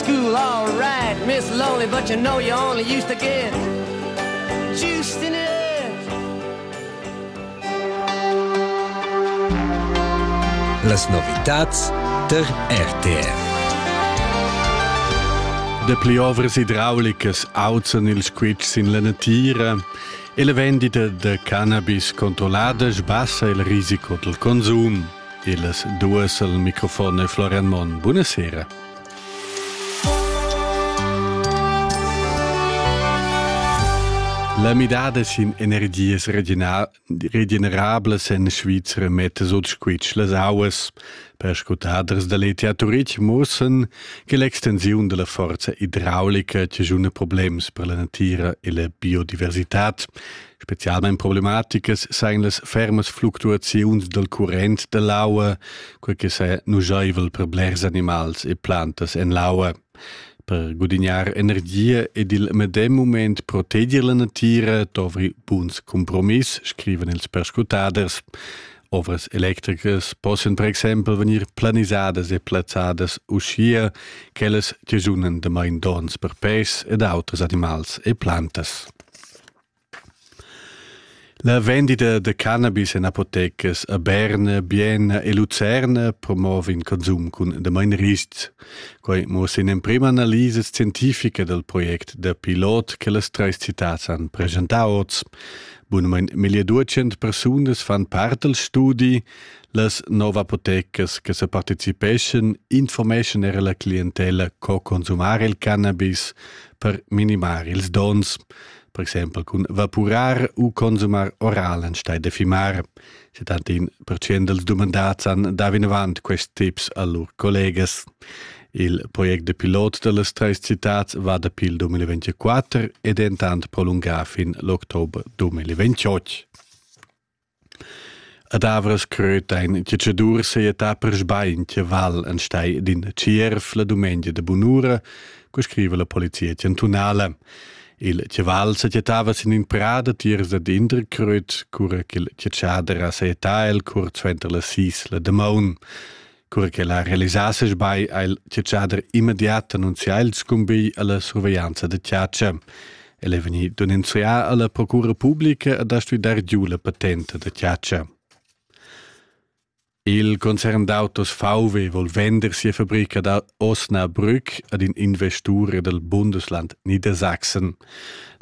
school all right, Miss Lonely, but you know you only used to get juiced in it. Las novitats ter RTF. Dapli ovras idraulicas auzan ils squitsch sin la natira e la vendita da cannabis controllada sbassa il risico dal consum. E las duas al microfon è Florian Monn. Buonasera. La midada sin energias regenerablas en Svizra metta sut squitsch las auas. Perscrutaders da l'ETA Turich mussan che l'extensiun da la forza idraulica c'è un problems per la natira e la biodiversità. Specialmein problematicas sein las fermas fluctuaziuns dal current dall'aua, quei che sa nugeivel per blers animals e plantas en l'aua. Per gudignar energia ed il medem moment proteger la natira dovri buns compromiss, scriven ils perscrutaders. Ovras electricas possono per exempel venir planisadas e plazzadas uschia ch'ellas tigiunen da main donns per pes ed auters animals e plantas. La vendida da cannabis en apotecas a Berna, Bienna e Lucerna promova in consum cun damain ristgs. Quai muossa in'emprima analisa scientifica dal project da pilot che las trais citads han presentà oz. Bunamain 1200 persunas fan part dal studi. Las nov apotecas che sa participeschan informeschan era la clientella co consumar il cannabis per minimar ils dons. per exempel cun vapurar u consumar oral enstei de fimar. Se tantin percient dels dumandats han da vinavant quest tips a lur collegas. Il project de pilot de les treis citats va da pil 2024 ed entant prolungà fin l'october 2028. Ad avras crötain che cha Dur seja ta persbain che val an stai ed in tschierf la dumengia da bunura, co scriva la polizia chantunala. Il chaval s'agiatava sin in prada tiers dad Interkröt, cura ch'il chatschadera seja ta el cur suenter las sis la damaun. Cura che la realisasses bai ha il tiatschader immediat annunzià il scumbigl alla surveglianza da tiatscha. El è veni denunzià alla procura pubblica ad astui dar giu la patente da tiatscha. Il concern d'autos VW vol vender sia fabrica da Osnabrück ad in investur dal Bundesland Niedersachsen.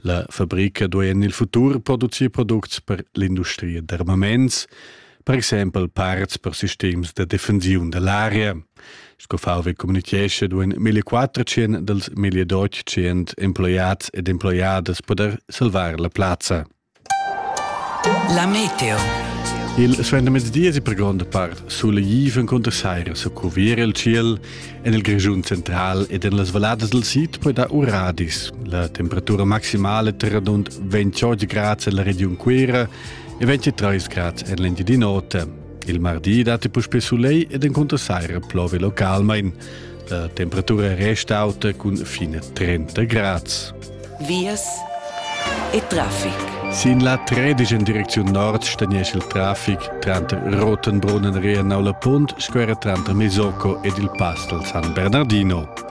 La fabrica duai en il futur producir products per l'industria d'armaments. per exempel parts per sistems da defensiun da l'aria. Sco VW communichescha duain 1400 dals 1800 emploiads ed emploiadas poder salvar la plazza. La meteo. Il suendermezdi è per gronda part solegif encunter saira su cuvier il ciel en il Grischun central ed en las valladas del sid poi da uradis. La temperatura maximale terra dund 28 grads en la region Cuira e 23 grad en l'Engiadina Otta. Il mardi datti puspè soleil ed encunter saira plovi localmain. La temperatura resta auta cun fine 30 grad. Vias e traffic. Sin la tredigen direcziun nord stagnesce il traffic tranter Rotenbrunnen, Reenau la Punt, square tranter Mesocco ed il pass dal San Bernardino.